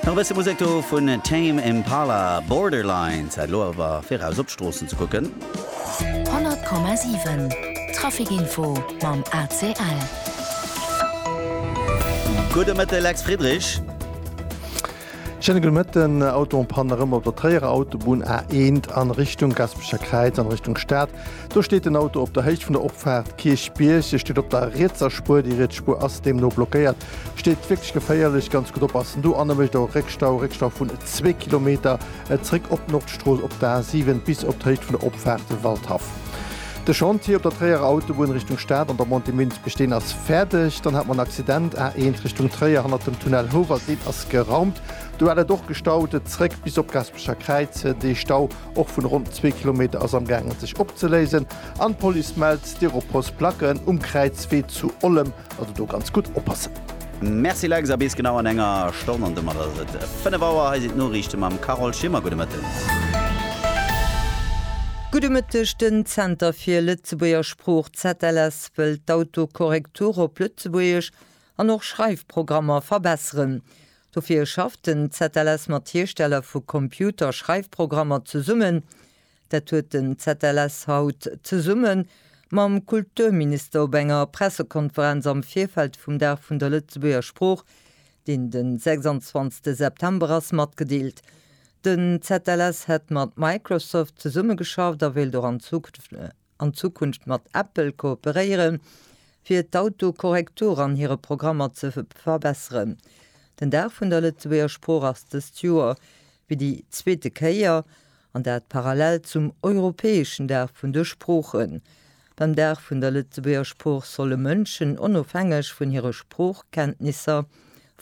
Nach e bësse Musek do vun Tame Impala, Borderline, Zäit elo awer fir eraus op d'Stroossen ze kucken. 100,7 Trafic Info mam ACL. Gudde Mëtte Lex Friedrich. Schéine gudde Mëtten. Auto en panne erëm op der Tréierer Autobunn A1 a Richtung Gaspecher Kräiz an Richtung Stad. Do steet den Auto op der Héicht vun der Opfaart Kierchbierg. E steet op der rietser Spuer, déi riets Spuer ass deemno blockéiert. Steet wierklech geféierlech, ganz gutt oppassen do. An e mécht och Réckstau, Réckstau vun zwee Kilometer zréck op d'Nordstrooss, op d'A7 bis op d'Héicht vun der Opfaart Waldhaff. De Chantier op der Tréierer Autobunn Richtung Stad an der Montée Münz-Beesteen ass fäerdeg. Dann hat mer en Accident, A1 Richtung Tréier hannert dem Tunnel Houwald, deen ass geraumt. Do hat et och gestaut zréck bis op d'Gaasperecher Kräiz dee Stau. Och vun ronn zwee Kilometer ass am gaangen sech opzeléisen an d'Police mellt Styropors Placken um Kräizwee zu Ollem, also do ganz gutt oppassen. Merci Lex, a bis genau an enger Stonn an domat ass et 5 Auer. Hei sinn d'Noriichte mam Carole Schimmer. Gudde Mëtten. Gudde Mëtteg, Den Zenter fir Lëtzebuerger Sprooch, ZLS, wëllt d'Autokorrektur op Lëtzebuergesch An och Schreifprogrammer verbesseren. Dofir schafft den ZLS mat Hiersteller vu Computerschreifprogrammer zesummen. Dat huet den ZLS haut zesumme mam Kulturminister op enger Pressekonferenz am Virfeld vum Dag vun der Lëtzebuerger Sprooch, deen de 26 September ass, matgedeelt. Den ZLS hätt mat Microsoft zesummegeschafft a wéilt och an Zukunft mat. an Zukunft mat Apple kooperéieren, fir d'Autokorrektur an hire Programmer ze verbesseren. Den Dag vun der Lëtzebuerger Sprooch ass dëst Joer fir déi zweete Kéier, an dat parallel zum europäeschen Dag vun de Sproochen. Beim Dag vun der Lëtzebuerger Sprooch solle Mënschen onofhängeg vun hire Sproochkenntnisser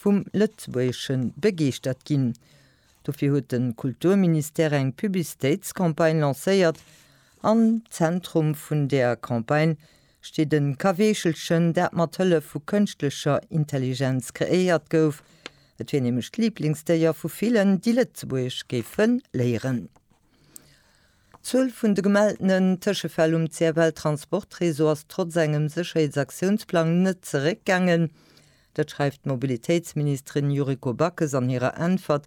vum Lëtzebuergesche begeeschtert ginn. Dofir huet de Kulturministère eng Publicitéitscampagne lancéiert, Am Zentrum vun der Campagne steet e Kaweechelchen, dat mat Hëllef vu kënschtlecher Intelligenz kreéiert gouf. Et wier nämlech d'Liblingsdéier vu villen, déi Lëtzebuergesch géife léieren. D'Zuel vun de gemeltenen Tëschefäll um CFL Transportreseau ass trotz engem Sécherheetsaktiounsplang net zeréckgaangen. Dat schreift d'Mobilitéitsministerin Yuriko Backes an hirer Äntwert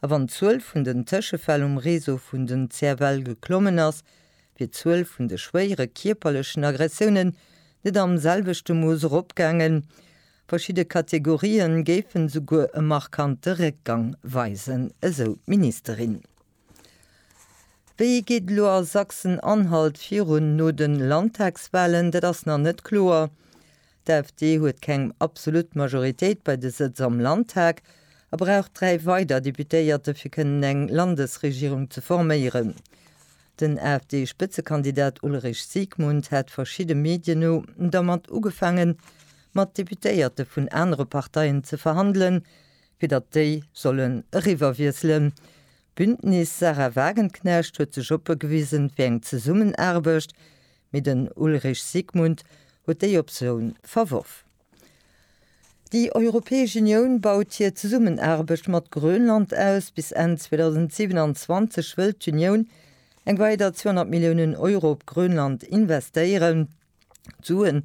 A wann d'Zuel vun den Tëschefäll um Réseau vun den CFL geklommen ass, wier d'Zuel vun de schwéiere kierperlechen Aggressiounen net am selwechte Mooss eropgaangen. Verschidde Kategorie géifen esouguer e markante Réckgang weisen, esou d'Ministerin. Wéi geet et elo a Sachsen-Anhalt virun no de Landtagswalen? Dat ass nach net kloer. D'AfD huet keng absolut Majoritéit bei de Sëtz am Landtag a brauch dräi weider Deputéierte fir kënnen eng Landesregierung ze forméieren. Den AfD-Spëtzekandidat Ulrich Siegmund hat verschidde Medien no dermat ugefaange mat Deputéierte vun anere Parteien ze verhandelen, fir datt déi sollen eriwwerwiesselen. D'Bündnis Sahra Wagenknecht huet sech oppe gewisen fir eng Zesummenaarbecht, Mee den Ulrich Sigmund huet déi Optioun verworf. Déi Europäesch Unioun baut hir Zesummenaarbecht mat Grönland aus. Bis Enn 2027 wëllt d'Unioun eng weider 200 Milliounen Euro op Grönland investéieren. D'Suen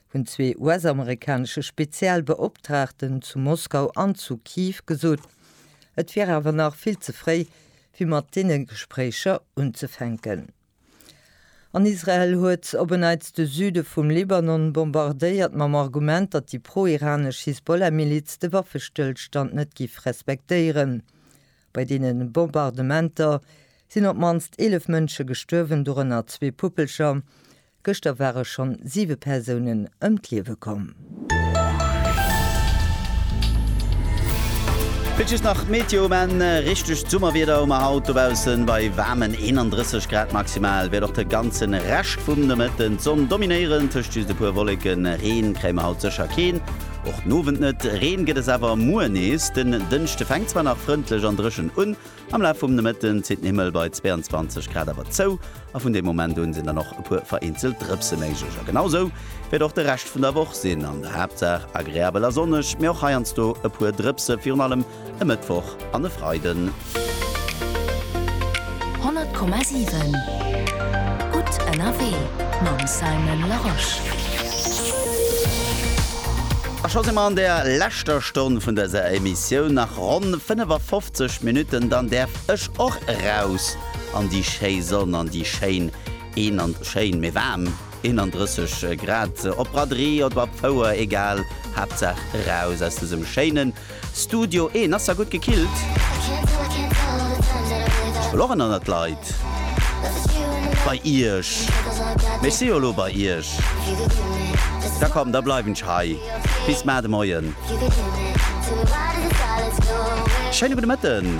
hunn zwee US-amerikanesche Spezialbeoptraagten zu Moskau an zu Kiew gesot. Et wier awer nach vill ze fréi, fir mat deene Gespréicher unzefänken. An Israel huet op en Neits de Süde vum Libanon bombardéiert, mam Argument, datt déi pro-iranesch Hisbollah-Miliz de Waffestëllstand net giff respektéieren. Bei deene Bombardementer sinn op d'mannst 11 Mënsche gestuerwen, dorënner zwee Puppelcher. Gëschter ware schonn siwe Persounen ëm d'Liewe komm. Fir d'just nach d'Meteo um Enn, Richtegt Summerwieder hu mer haut dobaussen bei waarmen 31 Grad. Maximal wäert och de ganze Rescht vum Nomëtten d'Sonn dominéieren, tëscht just e puer Wolleken. Reen kréie mer haut sécher keen. Och den Owend net, Reen gëtt es awer muer nees. Den Dënschde fänkt zwar nach frëndlech an dréchen un, am Laf vum Nomëtten zitt den Himmel bei 22 Grad awer zou a vun deem Moment un sinn dann och e puer vereenzelt Drëpse méiglech. A genau esou wäert och de Rescht vun der Woch sinn, an der Haaptsaach agreabel a sonneg, mee och heiansdo e puer Drëpse, virun allem e Mëttwoch an e Freiden. 100,7 Gutt ënnerwee mam Simon Larosche. A scho si mer an der leschter Stonn vun dëser Emissioun. Nach ronn 55 Minutten, dann däerf ech och eraus an déi schéi Sonn, an déi schéin een an schéin, mee waarm 31 Grad. Op Braderie oder op Fouer, egal, Haaptsaach eraus aus dësem schéinen, Studio een ass da gutt gekillt. Ech wëll och en anert Leit bei iech, mee ech si jo elo bei iech. Da komm, da bleiwen ech hei bis mar de Moien. Schéine gudde Mëtten.